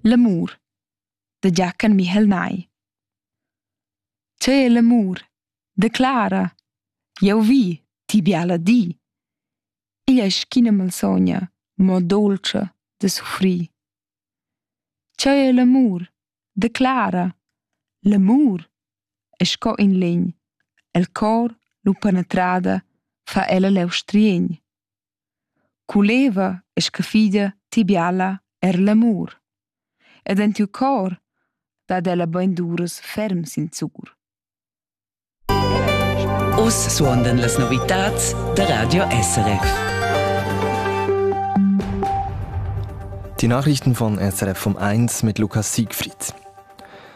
L'amur de Giachen Michel Nay Tè l'amur, declara, jau vi, ti biala di. Igl è sch'ina malsogna, mo dolce de suffrir. Tè è l'amur, declara, l'amur è sco in legn, el cor lu penetrada fa ella leu striegn. Culeva e scha fida ti biala er l'amur. Ed en tiu cor dat ella beinduras ferm sinzur. Uss suondan las novitads da Radio SRF. Die Nachrichten von SRF vom 1 mit Lukas Siegfried.